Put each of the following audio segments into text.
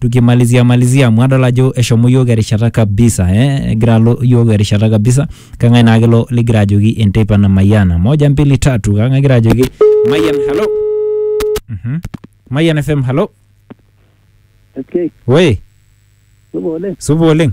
tukimalizia malizia amu adol ajo eshomo yiok erishata kabisa eh? egira alo yiok erishata kabisa kang'ae naa kelo ligira ajoki enteipa na mayiana moja mbili tatu kang'ae egira ajoki mayian halo Mhm. mayian fm halo Okay, we supa oleng. supa oleng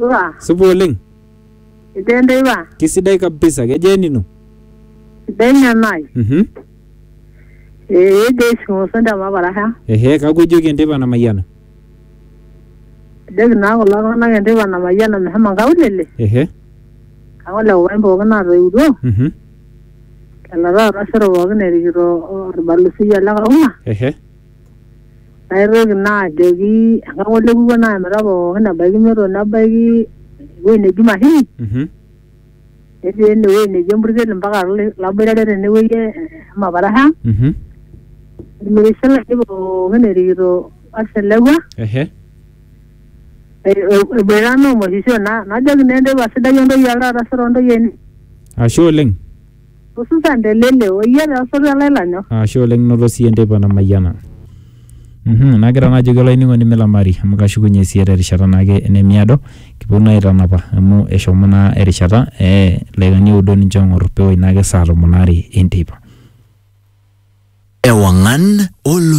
Iwa, Supa oleng. itende iwa, Kisidai kabisa. Kejaa enino? sidai nyanai. Mhm. Ee ejo ishimoso ndama parasha. Ehe, kakwa ijoki enteipa namayiana? Ejoki naa kulo tung'anak enteipa namayiana meshomo nkaulele. Ehe. Kake ole kupain pookin naatoiutuo, Mhm. lelo taata osero pookin erikito olbalusiai ole Karuma. Ehe. naitoki naa ajoki enkai ng'ole kupuo naa emita pookin ebaiki nyoto nebaiki ewueji neji mashini Mhm. netii ene wueji neji empurkel mpaka lai- laboitare tene wueji e- emaparasha Mhm. irmirishil ake pookin erikito oselekua Ehe. e- e- eboita naa omoshisho na- najoki naa enteipa sidai ontoyie oltaata sero ontoyie eni Ashe oleng. hususan te lele o iyie te osotua lai lanyor. Ashe oleng noto siyie enteipa namayiana. Mhm, nagira naa ajoki olainining'oni milamari amu kashukunye siyie terishata naake enemiado kiponu naa aitanapa amu eshomo naa erishata ee ildaikani oudo ninche oong'or peoi naake saa tomon aare enteipa. Ewang'an olosho.